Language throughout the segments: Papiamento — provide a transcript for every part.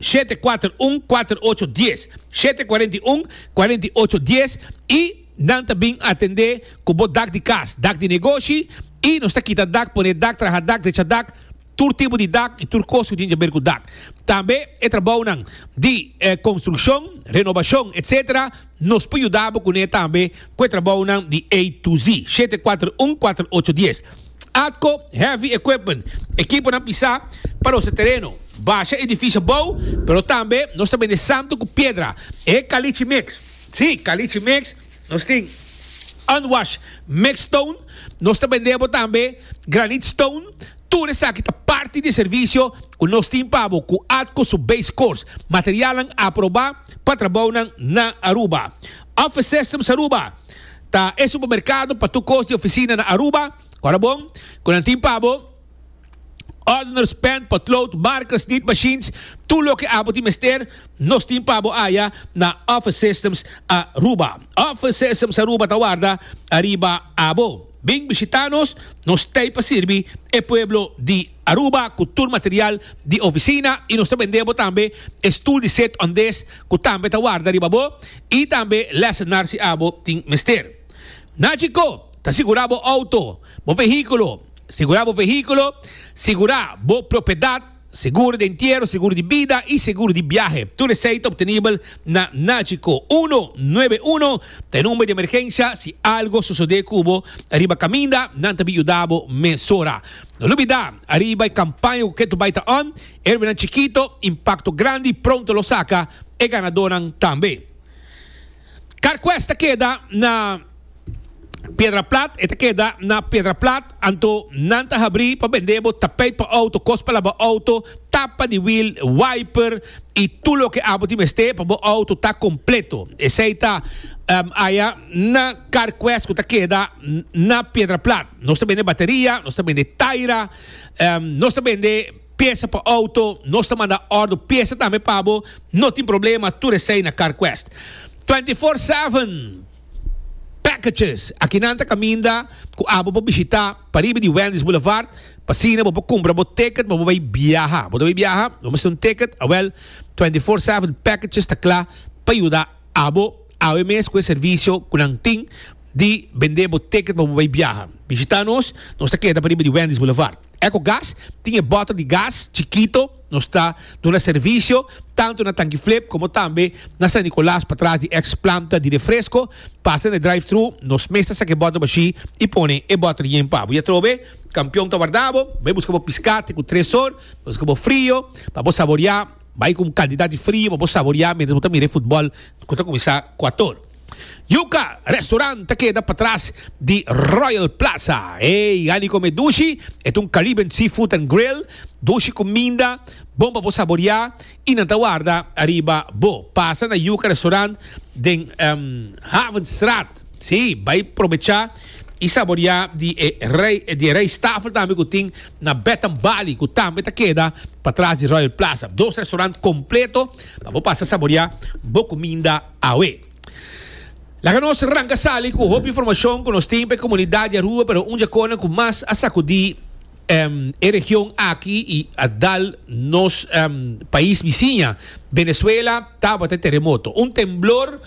shete kuater un kuater ocho dies shete kuarenta i un kuarenta i ocho dies i nan ta bin atendé ku bo dak di kas, dak di negoshi i nos ta kita dak, pone dak, traha dak, drecha dak, tur tipo di dak i tur kos ku tin kaber ku dak. Tambe e trabounan di konstrukshon, renobashon, etc. Nos por yuda bo kuné tambe ku e trabounan di A to Z, shete kuater un kuater ocho dies. Atco Heavy Equipment, ekiponan pisá pa nos e tereno, basha edifisio bou, pero tambe nos ta bende santu ku piedra, e kalichi mix. Sí, kalichi mix, nos tin unwash mix stone, nos ta bende bo tambe granite stone, tur esaki ta parti di e servisio ku nos tin pa bo ku Atco su base course, materialnan aprobá pa trabounan na Aruba. Office Systems Aruba. Ta e supermercado pa tur cos di oficina na Aruba. Ora bon, cu nan tin pa bo, ordeners, pen, potlood, markers, nit machines, tur loke abo tin mester, nos tin pa bo aya na Office Systems Aruba. Office Systems Aruba ta warda ariba abo. Bin bishita nos, nos t'ey pa sirbi e pueblo di. Aruba cu tur material di oficina y nos ta bende bo tambe e stoel di zet ondes cu tambe ta warda riba bo y tambe lessennar si abo tin mester. Naci co ta sigura bo auto, bo vehiculo, sigura bo vehiculo, sigura bo propiedad, seguro di entiero, seguro di bida y seguro di biahe. Tur esey ta obtenibel na Naci co. Uno nuebe uno ta e number di emergencia si algo sosode cu bo riba caminda, nan ta bin yuda bo mesora. No lubidá, ariba e kampaña ku Keto Bai ta on, Erwinan Chikito, impakto grandi i pronto lo saka e ganadónan tambe. Carquest ta keda na Piedraplat, e ta keda na Piedraplat, anto nan ta habrí pa bend'é bo tapeit pa outo, kos pa laba outo, tapa di wiel, wiper i tur loke abo tin mester pa bo outo ta kompleto. Esei ta aya na Carquest ku ta keda na Piedraplat. Nos ta bende bateria, nos ta bende taira, em, nos ta bende piesa pa auto, nos ta manda ordo piesa tambe pa bo, no tin problema, tur esei na CarQuest. 24 seven packages, aki nan ta caminda cu abo pa bishita pariba di Wendy's Boulevard, p'asina bo por cumpra bo ticket pa bo bay biaha. Bo ta bay biaha? Bo mester un ticket? Awel, 24 seven packages ta cla pa yuda Abo awe mes ku e servisio ku nan tin di bend'é bo ticket pa bo bai biaha. Bishitá nos, nos ta keda pariba di Wendy's Boulevard. Ecogas tin e bòtel di gas chikito, nos ta duna servisio tantu na Tanki Flip komo tambe na San Nicolas patras di eks planta di refresko. Pasa na e drive-thru, nos mes ta saka e bòtel bashí i pone e bòtel yen pa bo. I atrobe, kampion ta warda bo, bai buska bo piskate ku tres sor, nos ga bo frio pa bo saboreá. Bai ku un kantidat di frio pa bo saboriá mientras bo ta mira e futbòl ku ta kuminsá kuator. Yuka Restaurant ta keda patras di Royal Plaza. Ey, Hani Kome Dushi, e ta un Caribbean seafood and grill, dushi ku minda, bon pa bo saboriá i nan ta warda ariba bo. Pasa na Yuka Restaurant den Havenstraat. Sí, bai probechá i saboriá di e rij di e rijsttafel tambe ku tin na Baton Bali ku tambe ta keda patras di Royal Plaza. Dos restaurant kompleto pa bo pasa saboriá bo kuminda awe. Laga nos ranka sali ku hopi informashon ku nos tin pa e komunidat di Aruba pero un dje konan ku mas a sakudí e region aki i a dal nos pais bisiña Venezuela tabata e teremoto. Un temblor.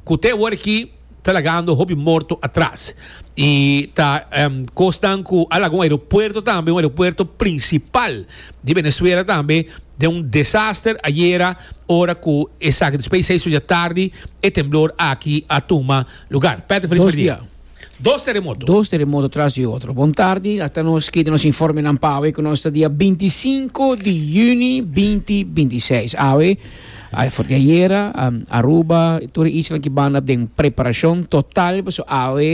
Cu te hora aki ta lagando hopi morto atras. Y ta cosnan cu a laga un aeropuerto tambe, un aeropuerto principal di Venezuela tambe, den un desaster ayera ora cu esaki despues di seis ora dje tardi e temblor aki a tuma lugar. Patrick Feliz Merdia. Dos teremoto. Dos teremoto tras di otro. Bon tardi, akta nos kita nos informenan pa awe ku nos ta dia binti sinku di yuni binti binti seis. Awe, ay for di ayera, Aruba, tur e isla ki banda den preparashon total paso awe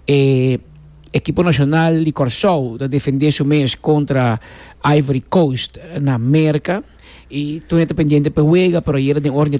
e ekipo nashonal di Kòrsou ta defendé su mes kontra Ivory Coast na Merka i tur e ta pendiente p'e wega pero ayera den ora di